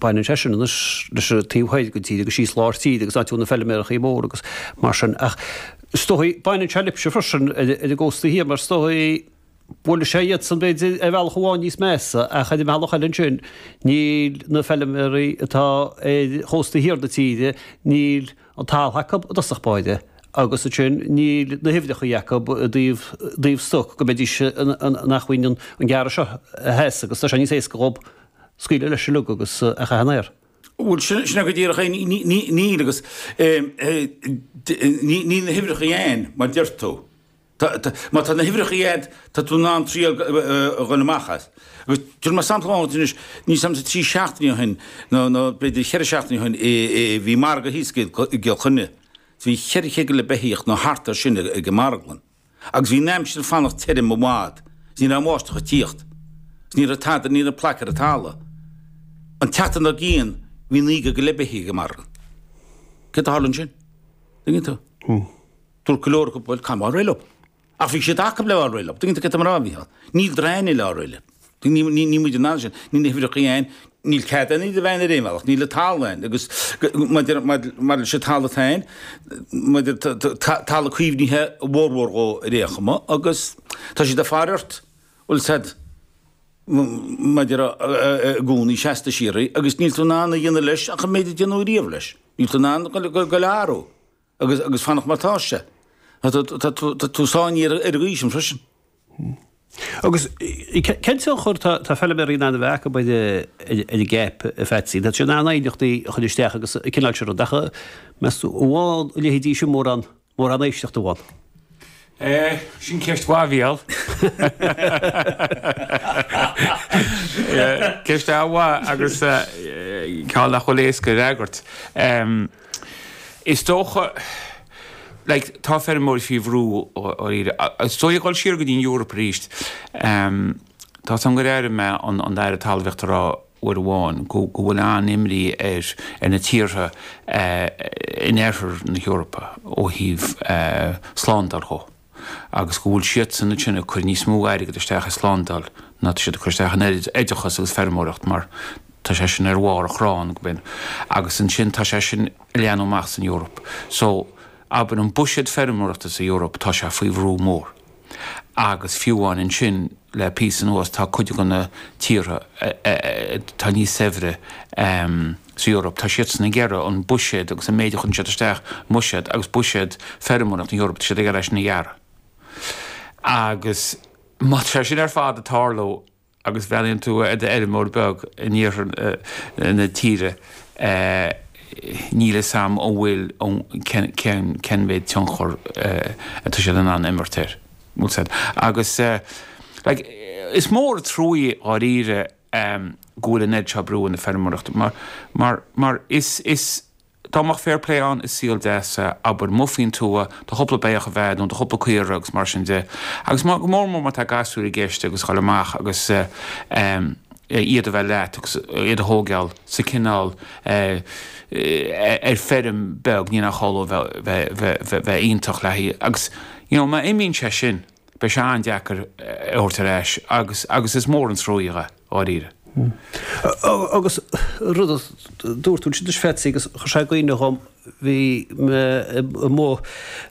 Baineann sé sin anois leis an taobh thoir den tír agus síos lár tíre agus áit a bhfuil na feiliméarachaí mór agus mar sin ach is dóigh baineann sé libhse freisin ar an gcósta thiar mar is dóigh bhuail sé iadsan b'fhéidir ar bhealach amháin níos measa ach ar an mbealach eile ansin níl na feilmeachaí atá ar chósta thiar na tíre níl an talamh acu i dtosach báire agus ansin níl na huimhreachaí acu i dtaobh i dtaobh stoc go mbeidís in acmhainn an gearradh seo a sheasamh agus tá sé níos éasca dhób scaoileadh leis an lag agus é a chaitheamh in aer. Bhuel, sin, sin é go díreach é. Níl agus níl na huimhreacha ann mar a deir tú. Tá, tá, má tá na huimhreacha ann, tá tú in ann treabhadh amach as. Agus cuir mé sampla ann anois, mar shampla trí seachtainí ó shin, nó, nó b'fhéidir cheithre seachtainí ó shin, bhí margadh thíos i gCill Chainnigh, bhí cheithre chéad go leith beithíoch nó thart ar sin ag an marglann. agus bhí an aimsir ag fanacht tirim i bhfad, is ní raibh an bháisteach ag tíocht, is ní raibh tada ní raibh plaic ar an talamh. An tseachtain dár gcionn bhí naoi gcéad go leith beithíoch ag an marglann. Céard a tharla ansin? Tuigeann tú? Dúirt go leor acu, bhuel, caithfidh mé fáil réidh leo. Ach bhí siad acub le fáil réidh leo. Tuigeann tú céard tá mé a rá, Mhícheáil? Níl againne le fáil réidh leo. Níl muide in ann sin, níl na huimhreacha ann, níl cead ann, ní bheadh ar aon bhealach, níl an talamh ann agus maidir leis an talamh atá ann, talamh caomhnaithe a fhormhór dhó ar aon chuma agus tá siad ag faire ort bhfuil a fhios agat maidir i gcónaí seasta síoraí agus níl tú in ann a dhéanamh leis ach an méid a déanadh ariamh leis, níl tú in ann dhul á athrú. agus agus fanacht mar atá sé. Tá tá tú sáinnithe ar an gcaoi sin freisin. Agus cén sórt tionchar atá tá feiliméaraí in ann a bheith acu ar an CAP, a Pheatsaí? Tá siad in ann aighneachtaí a chur isteach agus cineál sin rud, ach meas tú a bhfaigheann a leithéidí sin mórán mórán éisteacht ab ea? Sea sin ceist mhaith, Mhícheál. Ceist an-mhaith agus ceann nach bhfuil éasca a fhreagairt. Is dócha, like, tá feirmeoirí faoi bhrú dháiríre. Is dóigh ag dul siar go dtí an Eoraip arís, tá a fhios agam gur airigh mé an tAire Talmhaíochta ag rá uair amháin, go bhfuil an-imní ar na tíortha in Oirthear na hEorpa ó thaobh slándáil dhó agus go bhfuil siadsan ansin ag cur níos mó airgid isteach i slándáil ná atá siad ag cur isteach in oideachas agus feirmeoireacht mar tá sé sin ar bharr an chrainn acu agus ansin tá sé sin ag leathnú amach san Eoraip. So, abair, an buiséad feirmeoireachta sa Eoraip, tá sé faoi bhrú mór. agus fiú amháin ansin le píosa anuas tá cuid de na tíortha atá níos saibhre sa Eoraip, tá siadsan ag iarraidh an buiséad agus an méid a chuireann siad isteach i mbuiséad agus buiséad feirmeoireacht na hEorpa, tá siad ag iarraidh é sin a ghearradh. Agus tá sé sin ar fad ag tarlú, agus bhreathnaíonn tú ar fheirmeoir beag in iarthar na tíre níl 'fhios a'm an bhfuil an, cén mhéad tionchar atá siad in ann imirt air, bhfuil siad. Agus like is mór a' truaí dháiríre go bhfuil an oiread seo brú ar na feirmeoireacht mar, mar, mar is, is. Dá mbeadh fair play ann i saol deas, abair, muigh faoin tuath, do chúpla beathach, a bheith a'd, nó do chúpla caora agus mar sin de, agus má, go mór mór má tá gasúir i gceist agus dhul amach agus, em, iad a bheith leat agus iad a thóigeáil sa cineál, eh, ar feirm beag, ní nach ionadh a bheith, bheith, bheith, bheith, bheith iontach le haghaidh agus, you know, má imíonn sé sin. beidh sé an-deacair é a thabhairt ar ais agus agus is mór an truaí, dháiríre. Agus rud a dúirt tú, sin spéisiúil agus chuir sé i gcuimhne dhom, bhí mé amuigh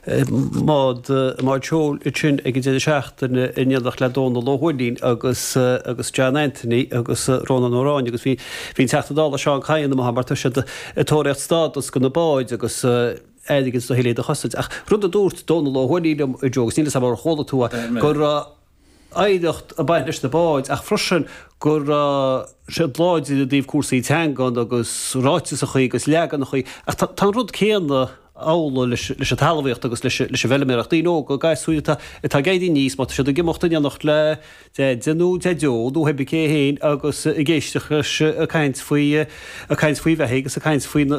i mbád seoil ansin ag an deireadh seachtaine in éineacht le Dónall Ó hUaithnín agus agus John Anthony agus Rónán Ó Ráinne agus bhí bhí an Teachta Dála Seán Kyne amuigh mar tá siad ag tóraíocht stádas do na báid agus airgid le thuilleadh a chosaint. Ach rud a dúirt Dónall Ó hUaithnín liom inné, agus níl fhios agam ar chuala tú é, go raibh oidhreacht ag baint leis na báid ach freisin go raibh siad láidir i dtaobh cúrsaí teangan agus ráiteasachaí agus leaganachaí. Ach tá an rud céanna amhlaidh leis an talmhaíocht agus leis an bhfeilméaracht. Daoine óga, gasúir atá ag éirí aníos, má tá siad ag imeacht in éineacht le deaide nó daideo nó hé bith cé é fhéin agus ag éisteacht leis ag caint faoi bheithígh agus ag caint faoi na